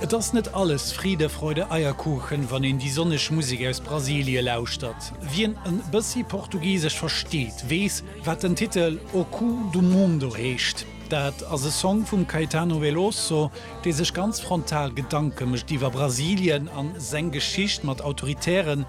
Et ass net alles Friede, Freude, Eierkuchen, wann een déi sonneg Musek aus Brasilie lauschtert. Wien e bëssi Portugisesch versteet, weess, wat den Titel O Cu do Mundo heescht. Dat ass e Song vum Caetano Veloso, dee sech ganz frontal Gedanke mécht iwwer Brasilien a seng Geschicht mat autoritären,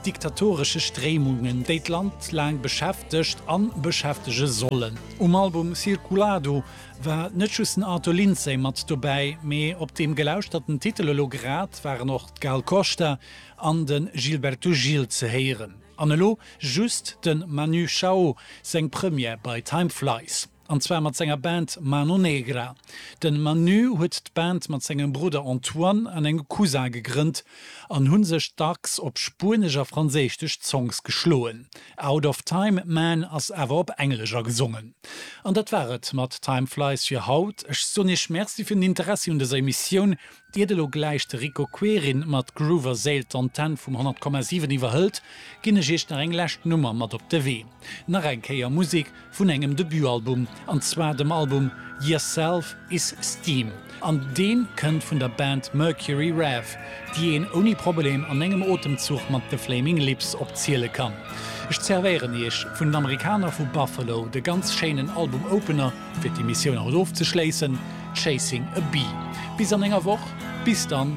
diktatoresche Stréimungen, déi d'Land laang beschäftegt an beschäftege sollen. Um Album Circulado War net just den Arthur Lindsay mat dobäi, mee op deem gelauschterte Titel elo grad waren och d'Gal Costa an de Gilberto Gil ze héieren. An elo just de Manu Chao seng Première bei Time Flies. An zwar mat senger Band Mano Negra. De Manu huet d'Band mat sengem Brudder Antoine an engem Cousin gegrënnt an hu sech dacks op spuenesch a franséistesch Songs geschloen. Out of Time, Man ass awer op Englesch a gesongen. An dat war et mat Time Flies fir haut. Ech soen Iech Merci fir den Interessi un dëser Emissioun. Iert elo gläich de Rico Querin mat Groove a Séil d'Antenn vum 100,7 iwwerhëlt, ginn ech Iech nach eng lescht Nummer mat op de Wee. Nach eng Kéier Musik vun engem Debutalbum, an zwar dem Album Yer Self Is Steam, an deen kënnt vun der Band Mercury Rev, déi een ouni Probleem an engem Otemzuch mat The Flaming Lips opziele kann. Ech zervéieren iech vun den Amerikaner vu Buffalo de ganz schéinen Album Opener, fir d'Emissioun haut ofzeschléissen, Chasing a Bee. Bis an enger Woch, bis dann!